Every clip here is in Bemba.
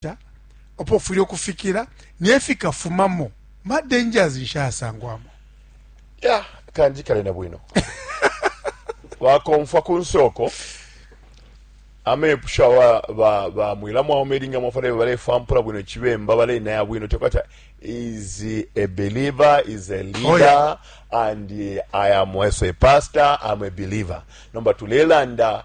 nshita, apo ufwile ukufikila, ne fikafumamo. Ma dangers nshi ayasangwamo? Ya, kanjikale na bwino. Wakomfwa ku nsoko, amepusho awa ba, ba mwila mwaume ilinga mwafale balefampula bwino chibemba balenaya bwino tekwata is a believer is a leader oh, yeah. and uh, I am also a pastor I'm a believer nomba tulelanda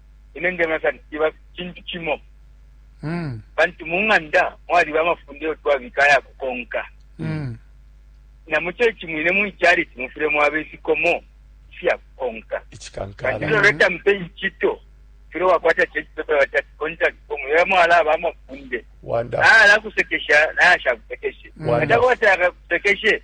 ine ndemona sana kiba kintu kimo mm. pantu mu ng'anda mwaliba amafunde yo twabika aya kukonka mm. na mu kyeki mwine mu ikyaliti mufire mwaba ifikomo ifya kukonka kandi lero leta mpe inkito fire wakwata kyeki pepa batati contact form yo mwala aba amafunde naye alakusekesha naye ashakusekeshe atakwata akakusekeshe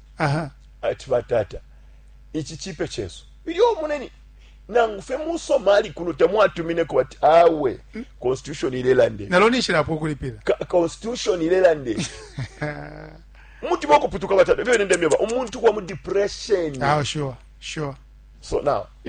Aha. Ati, Batata, ici cipe cesu. Ilyo umuneni, nangu fye mu Somali kuno tamwatumineko, bati, awe, hmm? Constitution ilelande. Nalo nishilapo kulipila. Ka Constitution ilelande. Mutima okuputuka batata. Byo nende myoba. Umuntu kwa mu depression. Ah, sure, sure. So now, if